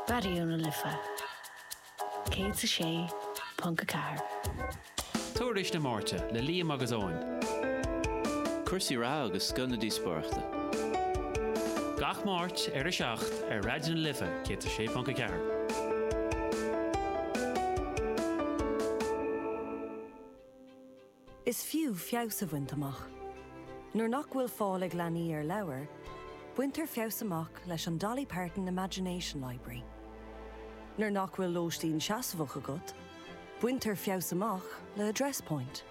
Raidió na Life 106.4. Tuairisc na Máirte le Liam agus Eoin. Cúrsaí reatha agus Scoil na Díospóireachta. Gach Máirt ar 7 ar Raidió na Life 106.4. Is fiú feabhas a bhaint amach. Nuair nach bhfuil fáil ag leanaí ar leabhair, baintear feabhas amach leis an Dolly Parton Imagination Library. Nuair nach bhfuil lóistín seasmhach agat, baintear feabhas amach le Address Point.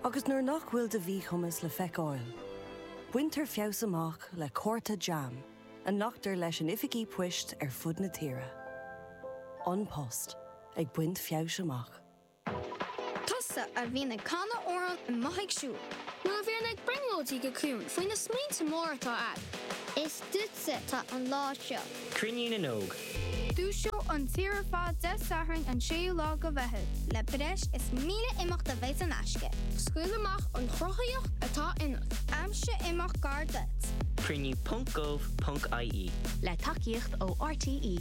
Agus nuair nach bhfuil do mhíchumas le feiceáil, baintear feabhas amach le cárta jam a nglactar leis in oifigí poist ar fud na tíre. An Post ag baint feabhais amach. Tusa a bhíonn ag canadh amhrán i mbothaigh siúil. Nó a bhíonn ag brionglóidí go ciúin faoi na smaointe móra atá agat. Is duitse atá an lá seo. Cruinniú na nÓg. Dúiseoidh an tír ar fad Dé Sathairn an 6ú lá de Mheitheamh. Le breis is 1,000 imeacht a bheidh in aisce. Scaoil amach an chruthaíocht atá ionat. Aimsigh imeacht gar duit. Cruinniú ponc gov ponc ie. Le tacaíocht ó RTÉ.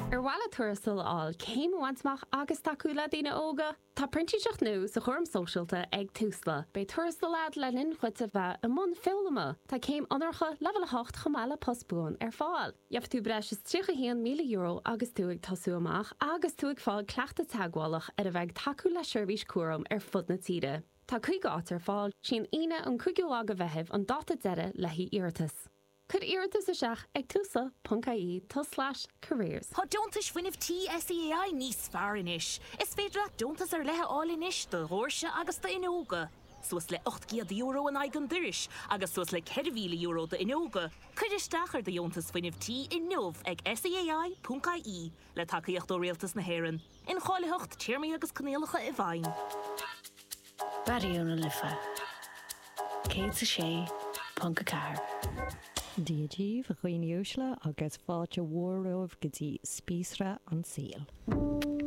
Ar mhaith leat tuarastal a fháil, céim a bhaint amach agus tacú le daoine óga? Tá printíseacht nua sa chúram sóisialta ag Tusla. Beidh tuarastal agat le linn dhuit a bheith i mbun foghlama. Tá céim onóracha leibhéal 8 chomh maith le post buan ar fáil. Gheobhaidh tú breis is €31,000 agus tú ag tosú amach agus tú ag fáil cleachtadh teagmhálach ar a bheith ag tacú le seirbhísí cúraim ar fud na tíre. Tá 50 áit ar fáil, sí an Aoine an 5ú lá de Mheitheamh an dáta deiridh le haghaidh iarratas. Cuir iarratas isteach ag tusla ponc ie tulslais careers. Tá Deontais Fuinnimh Tí SEAI níos fearr anois! Is féidir leat deontas ar leith a fháil anois do dhoirse agus d'fhuinneoga, suas le €800 in aghaidh an dorais agus suas le €4,000 d'fhuinneoga. Cuir isteach ar do Dheontas Fuinnimh Tí inniu ag SEAI, ponc, ie le tacaíocht ó Rialtas na hÉireann. Incháilitheacht, téarmaí agus coinníollacha i bhfeidhm. Raidió na Life 106.4. Dia daoibh, a dhaoine uaisle, agus fáilte mhór romhaibh go dtí Spíosra an tSaoil.